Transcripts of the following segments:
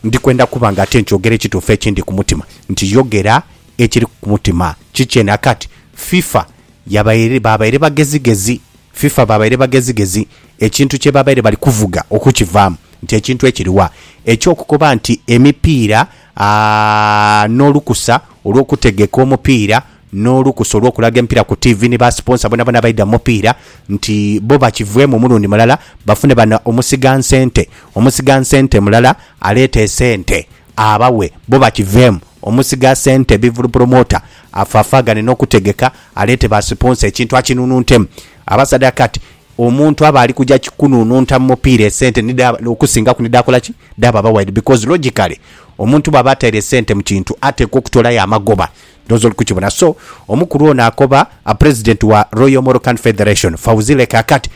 Ndi kwenda kuba nga ate nkyogera ekituufu ekindi ku mutima. Nti yogera ekiri ku mutima. Kikye na kati. FIFA yabaire, baabaire bagezigezi. FIFA baabaire bagezigezi ekintu kye baabaire bali kuvuga okukivaamu. Nti ekintu ekiri wa? Eky'okukoba nti emipiira, aa, n'olukusa olw'okutegeka omupiira n'olukusa olw'okulaga empira ku tiivi ni ba siponsa bonabona abaidha mu mupiira nti bo bakiveemu omulundi mulala bafune bano omusigansente. Omusigansente mulala aleeta esente abawe bo bakiveemu. Omusigasente bivulu pulomota afaafaagane n'okutegeka aleete ba siponsa ekintu akinununtemu. Abasaadha kati omuntu aba ali kuja kunununta mu mupiira esente nidhaba okusingaku nidhaakola ki? Dhaaba wide because logically omuntu bw'aba ataire sente mu kintu ateekwa okutoolayo amagoba Ndhowooza oli kukibona. So, omukulu ono akoba President wa Royal Moroccan Federation, Fawzile Kaakat,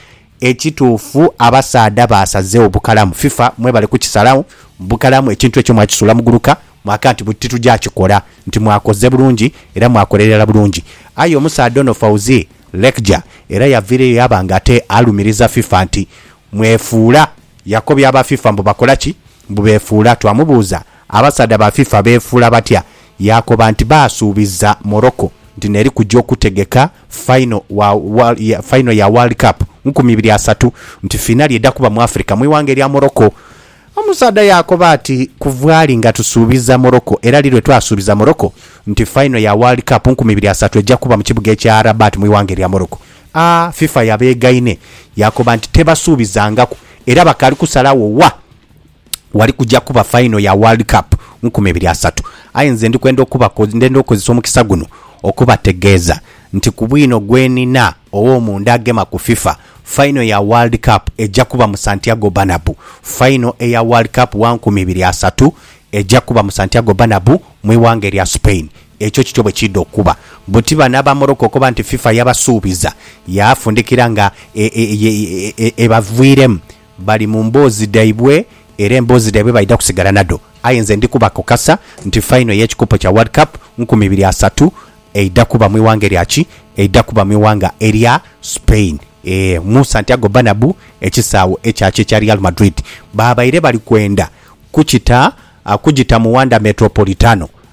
Ekituufu abasaadha baasazegho bukalamu. FIFA mwebale kukisalagho bukalamu. Ekintu ekyo mwakisuula muguluka mwaka nti buti tugya kikola. Nti mwakoze bulungi era mwakola irala bulungi. Aye omusaadha ono Fawzi Lekjaa era yaviireyo yaba nga ate alumiriza FIFA nti Mwefuula. Yakobya aba FIFA mbu bakola ki? Mbu beefuula. Twamubuuza, Abasaadha ba FIFA beefuula batya? Yaakoba nti baasuubiza Morocco nti n'eri kugya okutegeka fayino wa World, ya, fayino ya World Cup nkumi ibiri asatu, nti fiinali edha kuba mu Africa mu ighanga erya Morocco. Omusaadha yaakoba ati, Kuva ali nga tusuubiza Morocco, era li lwe twasuubiza Morocco nti fayino ya World Cup nkumi ibiri asatu eja kuba mu kibuga ekya Rabat mu ighanga erya Morocco. A FIFA yabeegaine yaakoba nti tebasuubizangaku era bakaali kusalagho wa wali kuja kuba faino ya World Cup mu nkumi ibiri asatu. Aye nze ndi kwenda okubako ndenda okukozesa omukisa guno okubategeeza nti ku bwino gwe nina ow'omunda agema ku FIFA, faino ya World Cup eja kuba mu Santiago Bernabeu. Faino eya World Cup wa nkumi ibiri asatu eja kuba mu Santiago Bernabeu mu ighanga erya Spain. Ekyo kityo bwe kiidha okuba. Buti bano aba Morocco okoba nti FIFA yabasuubiza, yaafundikira nga ebaviiremu. Bali mu mboozi dhaibwe era emboozi dhaibwe baidha kusigala nadho. Aye nze ndi kubakakasa nti faino ey'ekikopo kya World Cup nkumi ibiri asatu eidha kuba mu ighanga erya ki? Eidha kuba mu ighanga erya Spain. Ee, mu Santiago Bernabeu, ekisaawe ekya ki? Ekya Real Madrid. Baabaire bali kwenda kukita kugita mu Wanda Metropolitano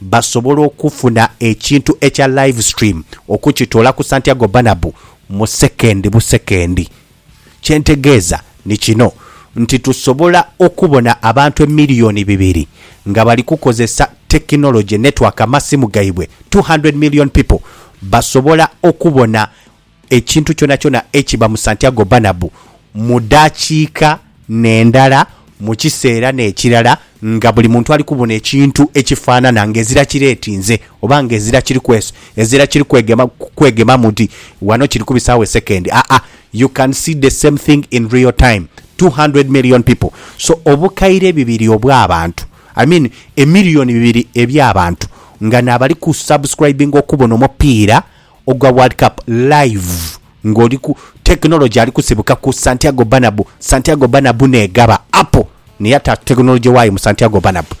basobola okufuna ekintu ekya live stream okukitoola ku Santiago Bernabeu mu sekendi busekendi. Kye ntegeeza ni kino nti tusobola okubona abantu emiliyoni bibiri nga bali kukozesa technology, network, amasimu gaibwe, two hundred million people basobola okubona ekintu kyonakyona ekiba mu Santiago Bernabeu mu dakiika n'endala, mu kiseera n'ekirala, nga buli muntu ali kubona ekintu ekifaanana ng'ezira kireetinze oba ng'ezira kiri kwesu, ezira kiri kwegema, kwegemamu nti wano kiri kubisaawo esekendi. Aa, you can see the same thing in real time, two hundred million people. So, obukaire bibiri obw'abantu, I mean, emillion bibiri eby'abantu, nga n'abali ku subscribinga okubona omupiira ogwa World Cup live nga oli ku technology ali kusibuka ku Santiago Bernabeu, Santiago Bernabeu n'egaba apo n'eyata technology waayo mu Santiago Bernabeu.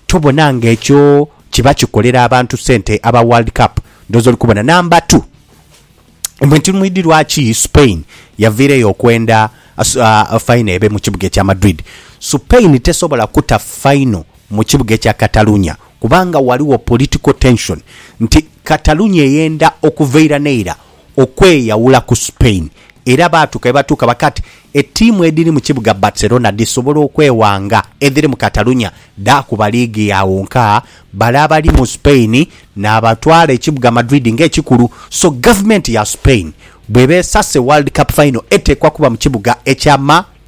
Tobona nga ekyo kiba kikolera abantu sente aba World Cup? Ndhooza oli kubona. Namba tu, mbu nti mwidhi lwaki Spain yaviireyo okwenda faino ebe mu kibuga ekya Madrid. Spain tesobola kuta faino mu kibuga ekya Catalunya kubanga ghaligho political tension nti Catalunya eyenda okuva eira n'eira okweyawula ku Spain era baatuuka ye batuuka bakaaba nti ettiimu edhiri mu kibuga Barcelona dhisobola okwewanga edhiri mu Catalunya dhaakuba liigi yaagho nkaa bale abali mu Spain naabatwala ekibuga Madrid nga ekikulu so gavumenti ya Spain bw'eba esase World Cup final eteekwa kuba mu kibuga ekya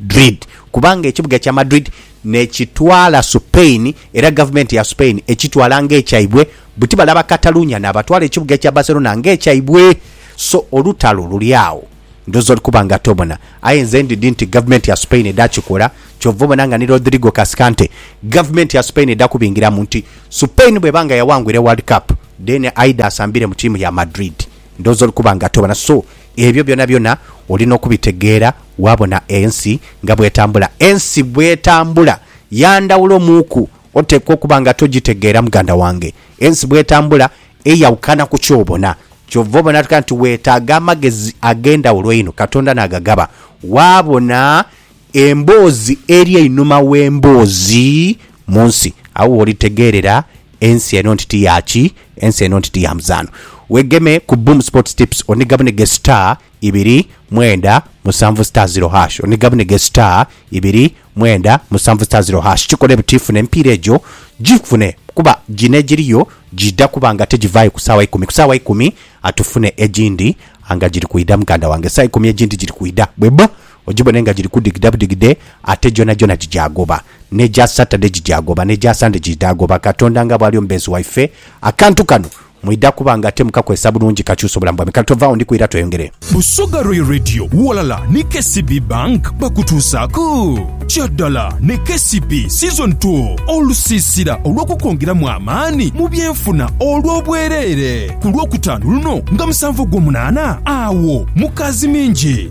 Madrid kubanga ekibuga kya Madrid n'ekitwala Supain era gavumenti ya Supain ekitwala ng'ekyaibwe buti bale Abakatalunya n'abatwala ekibuga kya Barcelona ng'ekyaibwe so olutalo luli agho ndhooza oli kuba nga tobona aye nze ndidhi nti gavumenti ya Supain edha kikola kyova obona nga ni Rodrigo Cascante gavumenti ya Supain edha kubingiramu nti Supain bw'eba nga yawangwire World Cup then aidha asambire mu tiimu ya Madrid ndhooza oli kuba nga tobona so Ebyo byonabyona oli n'okubitegeera waabona ensi nga bw'etambula. Ensi bw'etambula ya ndhawulo muuku, oteekwa okuba nga togitegeera muganda wange. Ensi bw'etambula eyawukana ku ky'obona. Kyova obona tukiraba nti weetaaga amagezi ag'endhawulo einho Katonda n'agagaba waabona Emboozi eri einhuma w'emboozi mu nsi. Agho w'olitegeerera ensi eno nti ti ya ki? Ensi eno nti ti ya muzaano. Weegeme ku Boom Sports Tips onigabunige star ibiri mwenda musanvu star zero hash, onigabunige star ibiri mwenda musanvu star zero hash. Kikole buti funa emipiira egyo gifune kuba gino egiriyo giidha kuba nga tigivaayo ku saawa ikumi. Ku saawa ikumi tufune egindi nga giri kwidha muganda wange. Saawa ikumi egindi giri kwidha bweba. Ogibone nga giri kudigida budigide, ate gyonagyona gigyagoba. N'egya Saturday gigyagoba, n'egya Sunday giidhagoba. Katonda nga bw'ali omubeezi waife, akantu kano mwidha kuba nga te mukakozesa bulungi kakyusa obulamu bwaimwe. Kale tovaawo, ndi kwira tweyongere. Busoga Royal Radio ghalala ni KCB Bank bakutuusaaku Kya Dala ne KCB Season Two, olusiisira olw'okukwongeramu amaani mu byenfuna olw'obwereere, ku Lwokutaano luno nga musanvu Ogwomunaana, agho mu Kaazimingi.